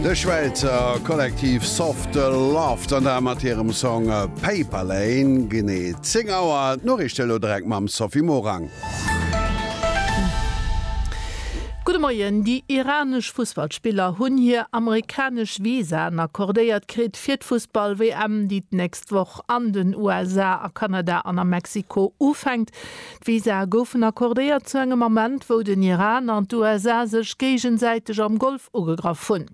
De Schwäizer Kollektiv Soft Laughter mat hirem Song Paper Lane. Genee 10 Auer, d'Noriichte elo direkt mam Sophie Morang. Gudde Moien, Déi iranesch Fussballspiller hunn hir amerikanesch Visaen accordéiert kritt fir d'Fussball-WM, déi d'nächst Woch an den USA, a Kanada an a Mexiko ufänkt. D'Visae goufen accordéiert zu engem Ament, wou den Iran an d'USA sech géigesäiteg am Golf ugegraff hunn.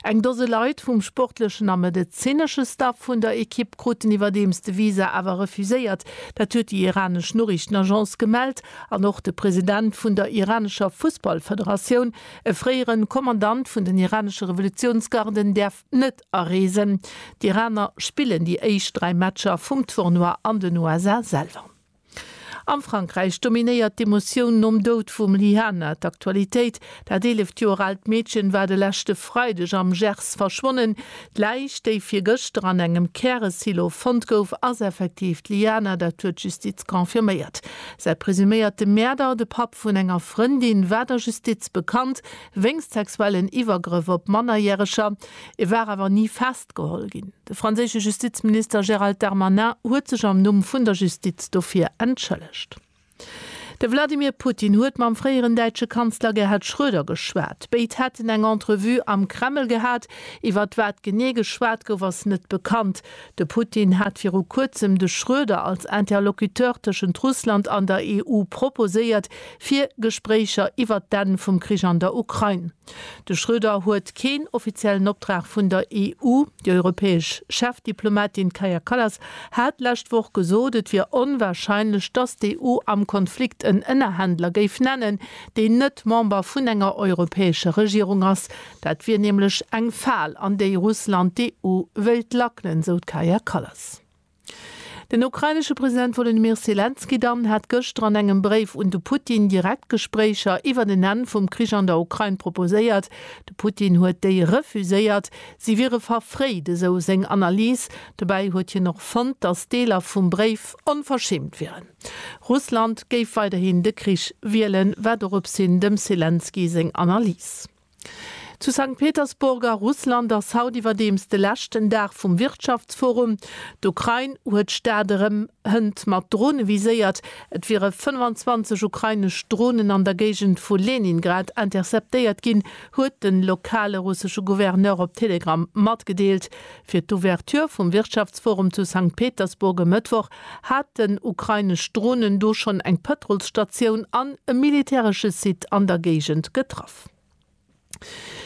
Eng Dose Leit vum sportlechen a medezinesche Staff vun der Ekipp kruten iwwerdeems de Visa awer refuséiert. Dat huet déi iranesch Noriichtenagence gemellt an och de President vun der iranescher Fussballfederatioun, e fréiere Kommandant vun den iranesche Revolutiounsgarden, däerf net areesen. D'Iraner spillen déi éischt dräi Matcher vum Tournoi an den USA selwer. Am Frankräich dominéiert d'Emotioun nom Doud vum Lyhana d'Aktualitéit. Dat 11 Joer aalt Meedchen war de leschte Freideg am Gers verschwonnen. D'Läich, déi virgëschter an engem Käresilo fonnt gouf, ass effektiv d'Lyhana, dat huet d'Justiz confirméiert. Säi presuméierte Mäerder, de Papp vun enger Frëndin, war der Justiz bekannt wéinst sexuellen Iwwergrëff op Mannerjäreger. E war awer ni fest. geholl ginn. De franséische Justizminister Gérald Darmanin huet sech am Numm vun der Justiz dofir entschëllegt. De Wladimir Putin huet mam fréieren däitsche Kanzler Gerhard Schröder geschwat. Béid hätten eng Entrevue am Kreml gehat. Iwwert wat genee geschwat gouf, ass net bekannt. De Putin hat viru kuerzem de Schröder als Interlocuteur tëschent Russland an der EU proposéiert, fir Gespréicher iwwert d'Enn vum Krich an der Ukraine. De Schröder huet keen offiziellen Optrag vun der EU. Déi europäesch Chefdiplomatin Kaja Kallas hat d'lescht Woch gesot, et wier onwarscheinlech, datt d'EU am Konflikt en Ënnerhändler géif nennen, deen net Member vun enger europäescher Regierung ass. Dat wier nämlech eng Fal, an déi Russland d'EU wéilt lackelen, sou d'Kaja Kallas. Den ukrainesche President Wolodymyr Selenskyj dann hat gëschter an engem Bréif un de Putin direkt Gespréicher iwwert en Enn vum Krich an der Ukrain proposéiert. De Putin huet déi refuséiert, si wiere verfréit, esou seng Analys. Dobäi huet hien och fonnt, datt Deeler vum Bréif onverschämt wieren. Russland géif weiderhin de Krich wielen, war doropshin dem Selenskyj seng Analys. Zu Sankt Petersburg a Russland ass haut iwwerdeems de leschten Dag vum Wirtschaftsforum. D'Ukrain huet d'Stad erëm Hënt mat Drone viséiert. Et wiere 25 ukrainesch Dronen an der Géigend vu Leningrad interceptéiert ginn, huet de lokale russesche Gouverneur op Telegram matgedeelt. Fir d'Ouverture vum Wirtschaftsforum zu Sankt Petersburg e Mëttwoch haten ukrainesch Dronen do schonn eng Pëtrolsstatioun an e militäresche Site an der Géigend getraff.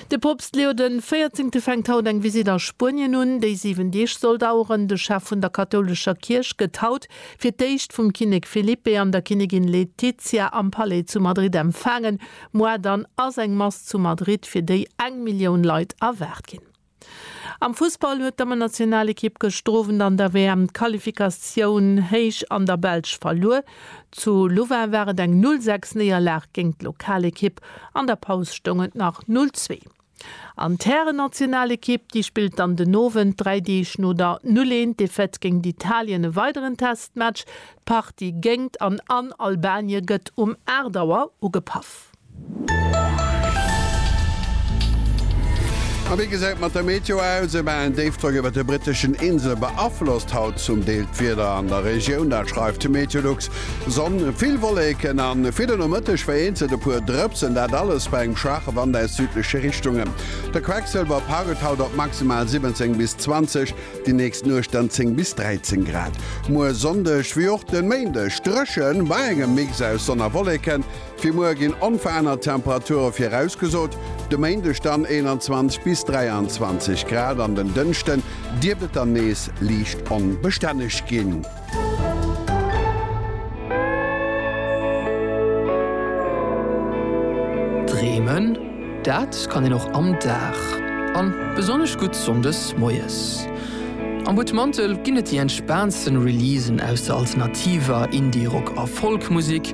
De Poopst Leo de Véierzéngte fänkt haut eng Visitt a Spuenien un, déi 7 Deeg soll daueren. De Chef vun der kathoulescher Kierch gëtt haut fir d'éischt vum Kinnek Felipe an der Kinnigin Letizia am Palais zu Madrid empfaangen. Muar dann ass eng Mass zu Madrid, fir déi eng Millioun Leit erwaart ginn. Am Fussball huet d'Dammennationalekipp gëschter Owend an der WM-Qualifikatioun héich an der Belsch verluer. Zu Louvain war et eng 0 6 Néierlag géint d'Lokalekipp, an der Paus stoung et nach 0 2. An d'Härennationalekipp, déi spillt dann den Owend, dräi Deeg no der 0 1 Defaite géint Italien, e weideren Testmatch. D'Partie géingt an an Albanie gëtt um 8 Auer ugepaff. A wéi gesäit et mat der Meteo aus? E balen Déifdrock iwwert de britteschen Insele beaflosst haut zum Deel d'Wieder an der Regioun, dat schreift de Meteolux. Sonn, vill Wolleken a fir de Nomëtteg vereenzelt e puer Drëpsen, dat alles bei engem schwaache Wand aus südleche Richtungen. De Quecksëlwer paukelt haut op maximal 17 bis 20, déi nächst Nuecht dann 10 bis 13 Grad. Muer Sonndeg wéi och de Méindeg dréchen, bei engem Mix aus Sonn a Wolleken. Fir muer ginn onverännert Temperature virausgesot, de Méindeg dann 21 bis 23 Grad, an den Dënschden dierft et dann nees liicht onbestänneg ginn. Dreemen, dat kann een och am Dag, an besonnesch gutt Sonndes moies. Am Butmantel ginn et déi entspaantsten Releasen aus der alternativer, Indie-, Rock a Folk-Musek.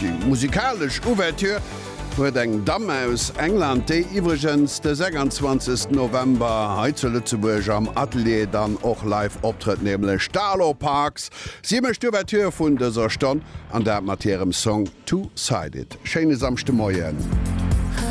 Déi musikalesch Ouverture huet eng Damm aus England, déi iwwregens de 26 November hei zu Lëtzebuerg am Atelier dann och live optrëtt, nämlech d'Arlo Parks. Si mécht d'Ouverture vun dëser Stonn, an dat mat hirem Song Two Sided. Schéine Samschdemoien.